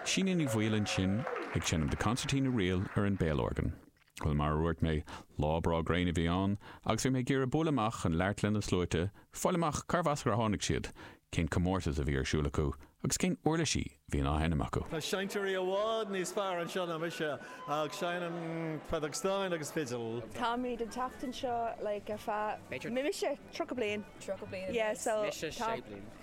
Síne Ní Bhaoill ansin ag seinm The Concertina Reel ar an béalorgan. Bhuel, mar a dhúirt mé, lá breá gréine a bhí ann, agus bhí mé ag iarraidh bualadh amach chun labhairt le na sluaite, fáil amach cárbh as ar tháinig siad, cén comórtas a bhí ar siúl acu, agus cén uirlisí a bhí á seinm acu. Tá seinnteoirí i bhfad níos fearr anseo ná mise, ach seinnim feadóg stáin agus fidil. Táimid ag teacht anseo like ar feadh, b'fhéidir, mise, tríocha bliain. Tríocha bliain? Yeah, so, tá. Mise, sé bliain.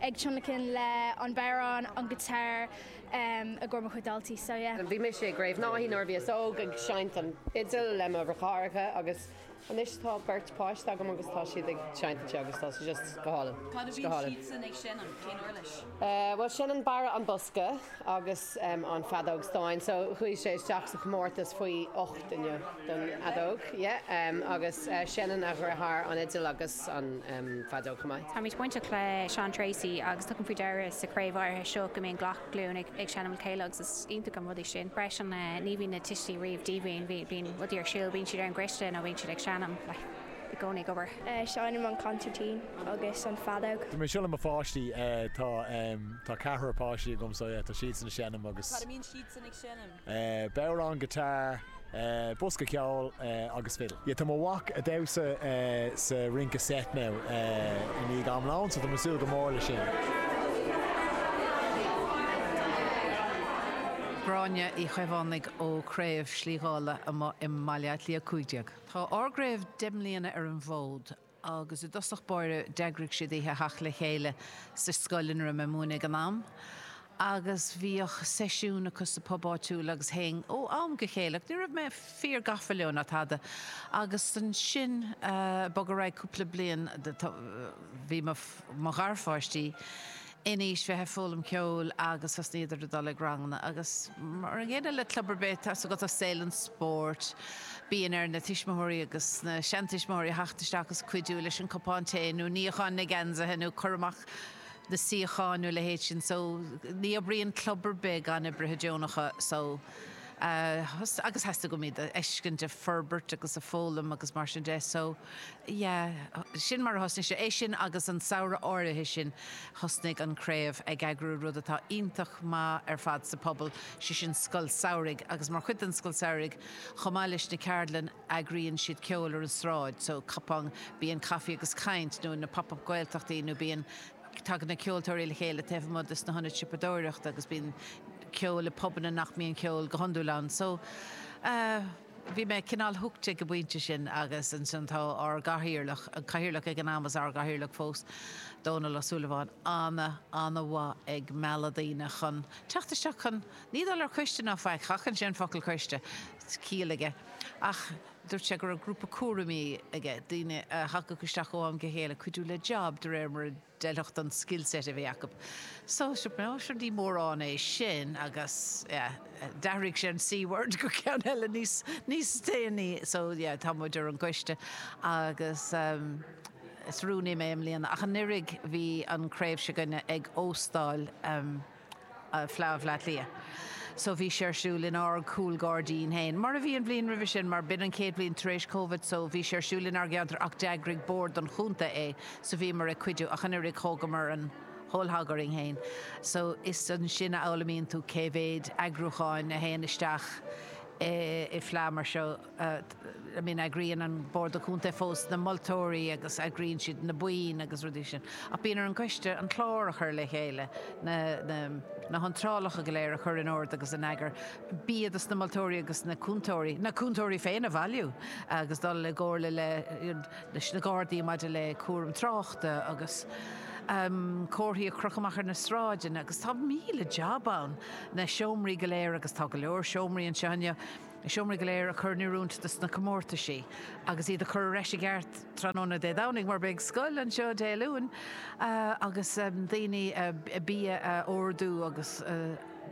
ag tionlacan le an bodhrán, an giotár, i gcomhair mo chuid daltaí, so yeah. Bhí mise i gCraobh Naithí nuair a bhíos óg ag seinnt an fidil le mo dheartháireacha agus anois tá beirt páiste agam agus tá siad ag seinnt ansin agus tá sé just go hálainn. Cad a bhíonn siadsan ag seinm? Cén uirlis? Bhuel seinneann Barra an Bosca agus an feadóg stáin, so chuaigh sé isteach sa chomórtas faoi ocht inniu don fheadóg, yeah, agus seinneann a dheartháir an fhidil agus. san am fadó chomh maith. Táimid bainteach le Seán Treacy agus tugaim faoi deara sa chraobh áirithe seo go mbíonn gach glúin ag seinm le chéile agus is iontach an rud é sin. Freisin ní bhíonn na tuistí riamh díomhaoin, bíonn rudaí ar siúl, bíonn siad ar an gcoiste nó bíonn siad ag seinm, i gcónaí ag obair. Seinnim an consairtín agus an feadóg. Bím ag siúl le mo pháistí, tá ceathrar páistí agam so yeah tá siadsan ag seinm agus. Cad a mbíonn siadsan ag seinm? bodhrán, guitar, bosca ceoil agus fiddle. Tá mo mhac ag damhsa sa rince seit now i ndiaidh am lóin so tá mé ag súil go mór leis sin. Gráinne Uí Chaomhánaigh ó Craobh Shlí Dhála amuigh i mBaile Átha Cliath 15. Tá ár gcraobh deich mbliana ar an bhfód. agus i dtosach báire d'eagraigh siad oíche teacht le chéile sa scoil ina raibh mé ag múineadh ag an am, agus bhíodh seisiún acu sa bpub áitiúil agus théinn ó am go chéile, ach ní raibh mé fíor gafa leo ná tada, agus ansin bog ar aghaidh cúpla bliain, bhí mo gharpháistí in aois bheith ag foghlaim ceoil agus thosnaíodar ag dul ag ranganna agus mar an gcéanna le club ar bith atá agat i saol an spóirt bíonn ar na tuismitheoirí agus na seantuismitheoirí a theacht isteach agus cuidiú leis an cupán tae nó níochán na geansaithe nó cur amach na suíochán nó a leithéid sin so ní oibríonn club ar bith gan oibrithe deonacha so agus theastaigh uaim iad a fheiscint ag forbairt agus ag foghlaim agus mar sin de so yeah, sin mar a thosnaigh sé. É sin agus an samhradh áirithe sin thosnaigh an Craobh ag eagrú rud atá iontach maith ar fad sa phobal, sé sin Scoil Samhraidh agus mar chuid den Scoil Samhraidh chomh maith leis na ceardlann eagraíonn siad ceol ar an sráid so cupán, bíonn caife agus caint nó na Pop-Up Gaeltachtaí nó bíonn, tagann na ceoltóirí le chéile taobh amuigh de sna hionaid siopadóireachta agus bíonn ceol i bpubanna nach mbíonn ceol go hiondúil ann so eh. Bhí mé cineál hooked ag an bpointe sin agus ansan tá ár gcathaoirleach, an cathaoirleach ag an am is ár gcathaoirleach fós, Dónal Ó Súilleabháin, ana, ana mhaith ag mealladh daoine chun teacht isteach chun, ní dul ar choiste ná faic, sheachain sé an focal coiste, ciall aige, ach dúirt sé go raibh grúpa cúraimí aige, daoine a thagadh isteach ó am go chéile, cuidiú le job de réir mar a D'fheilfeadh don skillset a bhí acu. So, sure, dar ndóigh, ní mórán é sin agus, yeah, d'athraigh sé an C-Word go ceann eile níos déanaí. So, yeah, tá muid ar an gcoiste agus, um, is rúnaí mé i mbliana ach anuraidh bhí an chraobh se'gainne ag óstáil, um, Fleá Bhleá Cliath. So bhí sé ar siúl in ár gcúlghairdín féin, mar a bhí an bhliain roimhe sin, mar b'in an chéad bhliain tar éis Covid, so bhí sé ar siúl inár gceantar ach d'eagraigh bord an chontae é, so bhíomar ag cuidiú, ach anuraidh, thógamar an whole hog orainn féin. So is ansin a fhoghlaimíonn tú cé mhéid eagrúcháin a théann isteach i bhfleá mar seo. I mean, eagraíonn an bord contae fós na moltóirí agus eagraíonn siad na boinn agus na rudaí sin. Ach bíonn ar an gcoiste an clár a chur le chéile, na, na, na hiontrálacha go léir a chur in ord agus in eagar, bia dos na moltóirí agus na cúntóirí, na cúntóirí féin a bhailiú agus dul i gcomhairle le, leis na Gardaí maidir le cúram tráchta agus ehm, comharthaí a chrochadh amach ar na sráideanna agus tá míle jab ann, na seomraí go léir agus tá go leor seomraí anseo inniu, Na seomraí go léir a chur in oiriúint dos na comórtaisí agus iad a chur ar ais i gceart tráthnóna Dé Domhnaigh mar beidh scoil anseo Dé Luain agus daoine, bia a ordú agus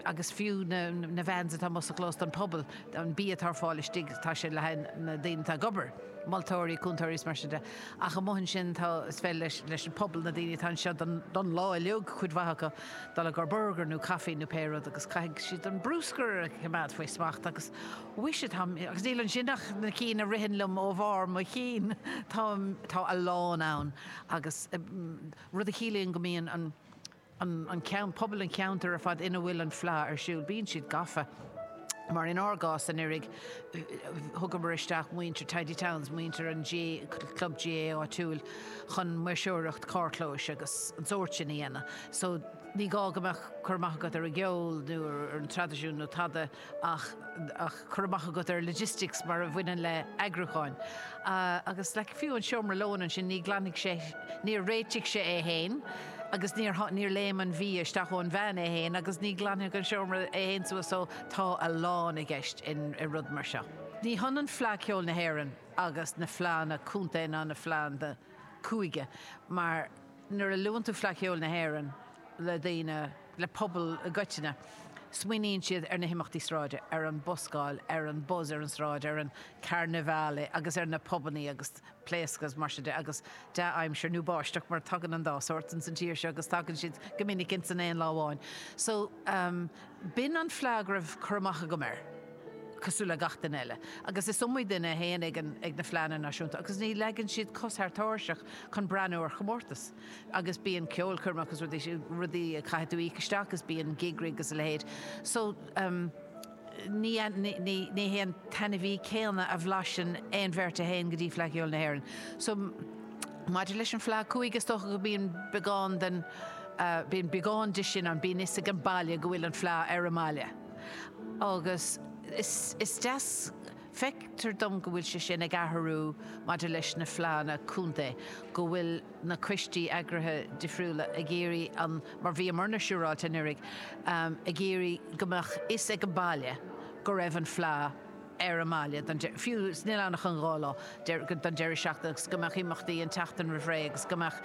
agus fiú na na vans atá amuigh sa chlós don pobal an bia atá ar fáil istigh tá sé le haghaidh na daoine atá ag obair, moltóirí, cúntóirí is mar sin de. Ach amuigh ansin tá is féidir leis leis an pobal na daoine atá anseo don don lá uiliug cuid mhaith acu, Dul ag ordú burgar nó caife nó pé rud agus caithfidh siad an brúscar a choimeád faoi smacht agus muise tá, agus níl ansin ach na cinn a ritheann liom ó bharr mo chinn, tá, tá a lán ann agus rud a chiallaíonn go mbíonn an, an, an ceann, pobal an cheantair ar fad ina bhfuil an fleá ar siúl, bíonn siad gafa. mar in ár gcás anuraidh, thugamar isteach muintir Tidy Towns, muintir an chlub GAA áitiúil, chun maoirseoireacht carrchlóis agus an sórt sin a dhéanamh. So, ní gá go mbeadh cur amach agat ar an gceol nó ar an dtraidisiún nó tada ach cur amach agat ar logistics mar a bhaineann le eagrúcháin. Agus like, fiú an seomra lóin ansin, níor ghlan sé, níor réitigh sé é fhéin, agus níor, níor léim an bia isteach ón veain é féin agus ní ghlanfaidh an seomra é féin suas so tá a lán i gceist in, i rud mar seo. Ní hionann Fleadh Cheoil na hÉireann agus na fleadhanna contae ná na fleadhanna cúige mar nuair a luann tú Fleadh Cheoil na hÉireann le daoine, le pobal i gcoitinne, smaoiníonn siad ar na himeachtaí sráide, ar an buscáil, ar an buzz ar an tsráid, ar an carnevale agus ar na pubannaí agus. pléaráca is mar sin de agus dea-aimsir nó báisteach mar tagann an dá shórt ins an tír seo agus tagann siad go minic ins an aon lá amháin so b'in an fleadh a raibh cur amach agam air cosúil le gach duine eile agus is iomaí duine a théann ag na Fleadhanna Náisiúnta agus ní leagann siad cos thar tairseach chun breathnú ar chomórtas agus bíonn ceolchoirmeacha agus rudaí, rudaí a caithfidh tú íoc isteach agus bíonn gig rig agus a leithéid so. ní hé an t-ainmhí céanna a bhlaiseann aon bheirt a théann go dtí Fleadh Cheoil na hÉireann so. Maidir leis an bhFleadh Cúige, is dócha go mbíonn beagán den, bíonn beagán de sin ann, bíonn fhios ag an baile go bhfuil an Fleadh ar an mbaile agus is deas, feictear dom go bhfuil sé sin ag athrú maidir leis na Fleadhanna Contae, go bhfuil. na coistí eagraithe difriúla ag iarraidh an, mar bhíomarna siúráilte anuraidh, ag iarraidh go mbeadh fhios ag an baile go raibh an fleá ar an mbaile don, fiú's nach bhfuil ann ach an dhá lá, don deireadh seachtaine agus go mbeadh imeachtaí an tseachtain roimh ré agus go mbeadh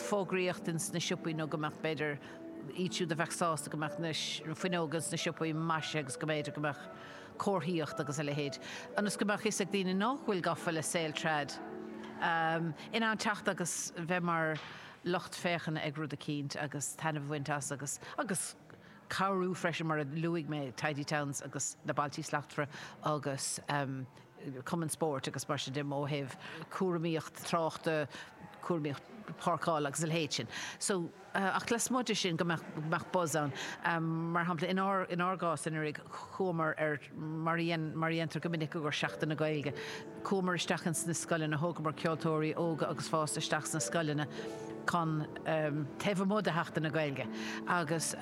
fógraíocht ins na siopaí nó go mbeadh, b'fhéidir, iad siúd a bheadh sásta go mbeadh na fuinneoga ins na siopaí maisithe agus go mb'fhéidir go mbeadh. comharthaíocht agus a leithéid, ionas go mbeadh fhios ag daoine nách bhfuil gafa le saol trad, in ann teacht agus bheith mar lucht féachana ag rud eicínt agus taitneamh a bhaint as agus agus cabhrú freisin mar a luaigh mé Tidy Towns agus na Bailtí Slachtmhara agus Cumann Spóirt agus mar sin de ó thaobh cúramaíocht tráchta, cúramaíocht páirceála agus a leithéid sin. So. ach lasmuigh de sin go mbeadh buzz ann. Mar shampla, in ár gcás anuraidh, chuamar ar, mar a dhéantar go minic i gcomhair Seachtain na Gaeilge, chuamar isteach ins na scoileanna, thógamar ceoltóirí óga agus fásta isteach sna scoileanna chun, taobh amuigh de Sheachtain na Gaeilge agus,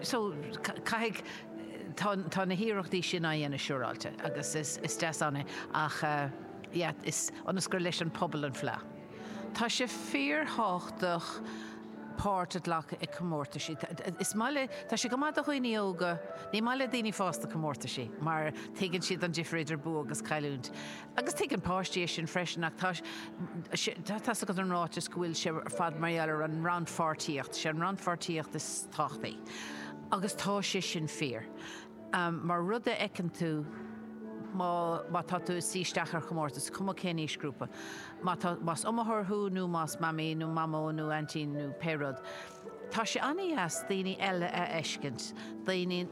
so, caithfidh, tá na hiarrachtaí sin á dhéanamh siúráilte agus is deas an ní é ach, yeah, is, ionas gur leis an pobal an fleá. Tá sé fíorthábhachtach páirt a ghlacadh i comórtaisí. Is maith le, tá sé go maith do dhaoine óga, ní maith le daoine fásta comórtaisí mar tuigeann siad an difir idir bua agus cailliúint. Agus tuigeann páistí é sin freisin ach tá sé, tá's agat an ráiteas go bhfuil sé ar fad mar gheall ar an rannpháirtíocht, sé an rannpháirtíocht is tábhachtaí agus tá sé sin fíor. Am mar rud a fheiceann tú má má tá tú ag suí isteach ar chomórtas, is cuma cén aoisghrúpa. Má tá, más iomaitheoir thú nó más mamaí nó mamó nó aintín nó pé rud, tá sé an-deas daoine eile a fheiscint, daoine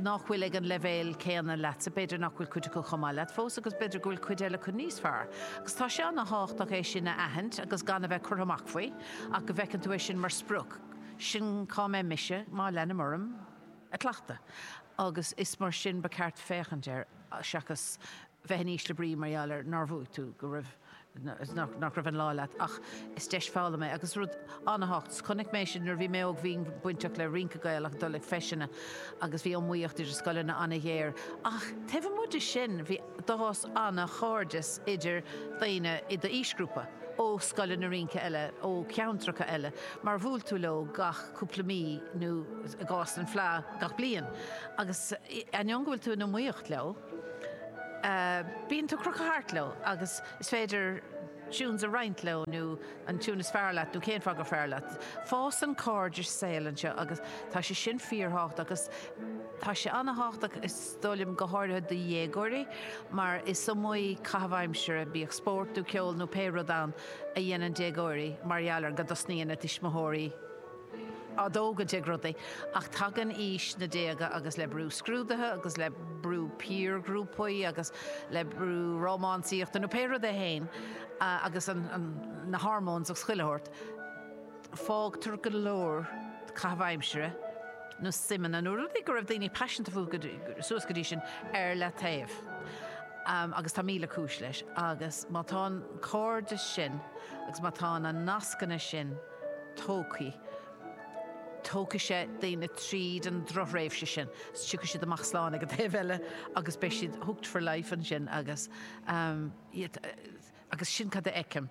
nach bhfuil ag an leibhéal céanna leatsa, b'fhéidir nach bhfuil cuid acu chomh maith leat fós agus b'fhéidir go bhfuil cuid eile acu níos fearr. Agus tá sé an-thábhachtach é sin a aithint agus gan a bheith curtha amach faoi ach go bhfeiceann tú é sin mar sprioc, sin cá mbeidh mise má leanaim orm. a chleachtadh, agus is mar sin ba cheart féachaint air, seachas bheith in ísle brí mar gheall ar nár bhuaigh tú, go raibh, nach raibh an lá leat. Ach is deis foghlama é, agus rud an-tábhachtach. Chonaic mé sin nuair a bhí mé óg, bhínn bainteach le rince Gaelach, ag dul ag feiseanna, agus bhí an iomaíocht idir scoileanna an-ghéar. Ach taobh amuigh de sin, bhí. D'fhás an-chairdeas idir dhaoine i d'aoisghrúpa ó scoileanna rince eile ó cheantracha eile mar bhuail tú leo gach cúpla mí nó, i gcás an Fleá, gach bliain. Agus ainneoin go bhfuil tú in iomaíocht leo, bíonn tú crochtha thart leo agus is féidir tunes a roinnt leo nó an tune is fearr leat nó cén fáth gur fearr leat. Fásann cairdeas saoil anseo agus tá sé sin fíorthábhachtach agus tá sé an-thábhachtach, dar liom, go háirithe do dhéagóirí, mar is iomaí caitheamh aimsire, bíodh spórt nó ceol nó pé rud ann, a dhéanann déagóirí mar gheall ar go dtosnaíonn a dtuismitheoirí á dtógaint ag rudaí. Ach tagann aois na déaga agus le brú scrúduithe agus le brú piarghrúpaí agus le brú rómánsaíochta nó pé rud é féin agus na hormóins ag scaoileadh thart, fágtar go leor caitheamh aimsire nó suimeanna, nó rudaí go raibh daoine paiseanta fúthu suas go dtí sin, ar leataobh, agus tá míle cúis leis, agus má tá an cairdeas sin agus má tá na nascanna sin tógtha, tógfaidh sé daoine tríd an drochthréimhse sin, tiocfaidh siad amach slán ag an taobh eile agus beidh siad hooked for life ansin, agus agus sin cad a fheicim.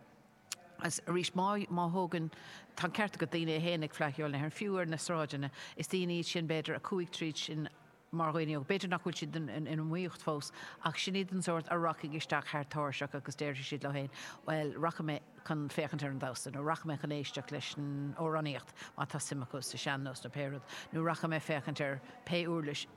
Agus arís, má thógann, tá an ceart agat, daoine a théann ag Fleadh Cheoil na hÉireann, fiú ar na sráideanna, is daoine iad sin, b'fhéidir, a chuaigh tríd sin mar dhaoine óga. B'fhéidir nach bhfuil siad in iomaíocht fós, ach sin iad an sórt a rachaidh isteach thar tairseach agus déarfaidh siad leo féin, Bhuel, rachaidh mé chun féachaint ar an damhsa, nó rachaidh mé chun éisteacht leis an amhránaíocht, má tá suim acu sa sean-nós nó pé rud, nó rachaidh mé ag féachaint ar pé uirlis.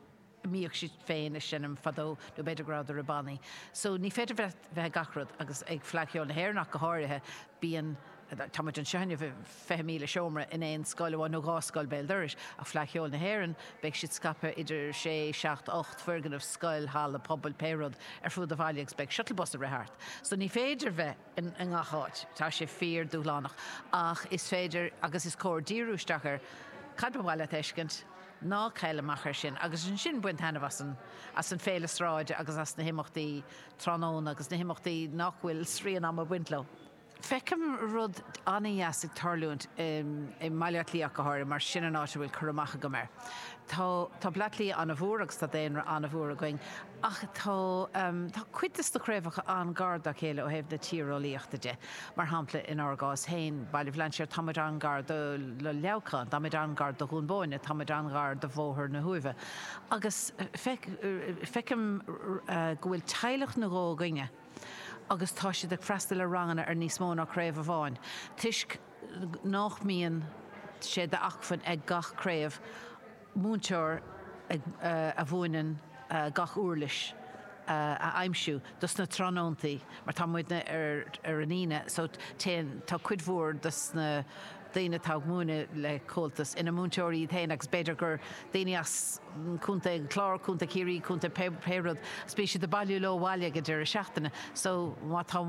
mbíodh siad féin ag seinm fadó nó b'fhéidir ag dul ar bhannaí so ní féidir bheith bheith ag gach rud agus ag Fleadh Cheoil na hÉireann ach go háirithe bíonn tá muid anseo inniu i 20,30 seomra in aon scoil amháin nó dhá scoil béal dorais ach Fleadh Cheoil na hÉireann beidh siad scaipthe idir sé, seacht, ocht foirgneamh, scoil, halla pobail, pé rud ar fuaid an bhaile agus beidh shuttle bus ag rith thart so ní féidir bheith. i ngach áit. Tá sé fíor dúshlánach, ach is féidir agus is cóir díriú isteach air. Cad ba mhaith leat a fheiscint? Ná caill amach air sin, agus ansin bain taitneamh as an, as an féile sráide agus as na himeachtaí tráthnóna agus na himeachtaí nach bhfuil srian ama ag baint leo. Feicim rud an-deas ag tarlúint i mBaile Átha Cliath ach go háirithe, mar sin an áit a bhfuil cur amach agam air. Tá, tá Bleá Cliath an-mhór agus tá daonra an-mhór againn, ach tá, tá cuid de sna craobhacha an-ghar dá chéile ó thaobh na tíreolaíochta de. Mar shampla, inár gcás féin, Baile Bhlainséir, tá muid an-ghar do Leamhcán, tá muid an-ghar do Dhún Búinne, tá muid an-ghar do Bhóthar na hUaimhe, agus feicim go bhfuil teaghlach nó dhó againne agus tá siad ag freastal ar ranganna ar níos mó ná craobh amháin, toisc nach mbíonn sé d'acmhainn ag gach craobh, múinteoir a mhúineann gach úirlis a aimsiú do sna tráthnóntaí mar tá muidne ar an Aoine so téann, tá cuid mhór de sna daoine atá ag múineadh le Comhaltas ina múinteoirí iad féin agus b'fhéidir gur daoine as Contae an Chláir, Contae Chiarraí, Contae pé rud, so bíonn siad ag bailiú leo abhaile ag an deireadh seachtaine so má tá.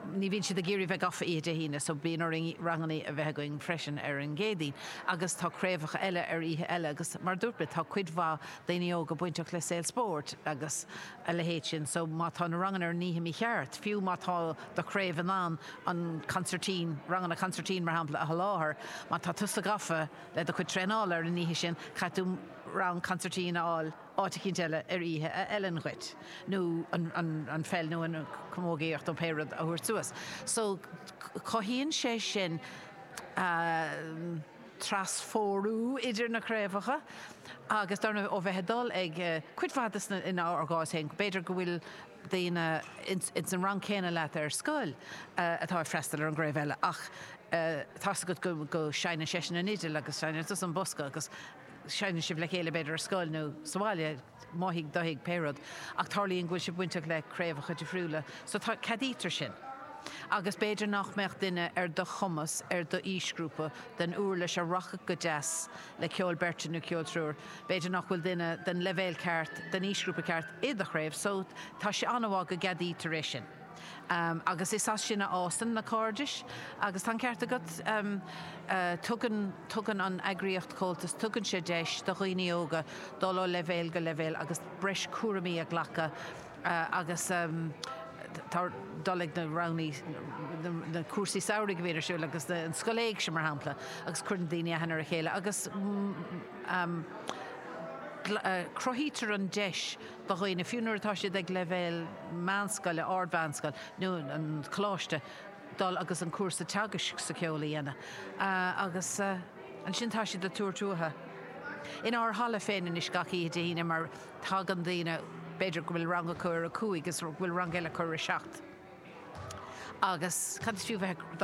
Ní bhíonn siad ag iarraidh a bheith gafa oíche Dé hAoine, so bíonn orainn ranganna a bheith againn freisin ar an gCéadaoin. Agus tá craobhacha eile ar oíche eile agus mar a dúirt mé, tá cuid mhaith daoine óga bainteach le saol spóirt agus a leithéid sin, so má tá na ranganna ar an oíche mícheart, fiú má tá do chraobh in ann an consairtín, ranganna consairtín mar shampla, a sholáthar, má tá tusa gafa le do chuid traenála ar an oíche sin, caithfidh tú rang consairtín a fháil. áit eicínt eile ar oíche a fheileann dhuit, nó an pheil nó an chamógaíocht nó pé rud a thabhairt suas. So cothaíonn sé sin trasphórú idir na craobhacha agus dar ndóigh ó bheith ag dul ag cuid mhaith de sna, in ár gcás féin, b'fhéidir go bhfuil daoine ins an rang céanna leat ar scoil atá ag freastal ar an gcraobh eile ach tá 's agat go seinneann seisean an fhidil agus seinneann tusa an bosca agus seinneann sibh le chéile, b'fhéidir ar scoil nó sa bhaile, mo thigh, do thigh, pé rud, ach tarlaíonn go bhfuil sibh bainteach le craobhacha difriúla, so tá, ceadaítear sin. Agus b'fhéidir nach mbeadh duine ar do chumas, ar d'aoisghrúpa, den uirlis a rachadh go deas le ceol beirte nó ceol triúir, b'fhéidir nach bhfuil duine den leibhéal ceart, den aoisghrúpa ceart, i do chraobh, so tá sé an-mhaith go gceadaítear é sin. agus is as sin a fhásann na cairdis agus tá an ceart agat, tugann, tugann an eagraíocht Comhaltas, tugann sé deis do dhaoine óga dul ó leibhéal go leibhéal agus breis cúraimí a ghlacadh agus tá dul ag na rang, na cúrsaí samhraidh a bhíonn ar siúl agus an Scoil Éigse mar shampla agus cuireann daoine aithne ar a chéile agus cruthaítear an deis do dhaoine, fiú nuair atá siad ag leibhéal meánscoile, ardmheánscoil nó an choláiste, dul agus an cúrsa teagaisc sa cheol a dhéanamh agus ansin tá siad ag tabhairt uathu in ár halla féin anois gach oíche Dé hAoine mar tagann daoine, b'fhéidir go bhfuil rang acu ar a cúig is go bhfuil rang eile acu ar a seacht agus cad is fiú bheith ag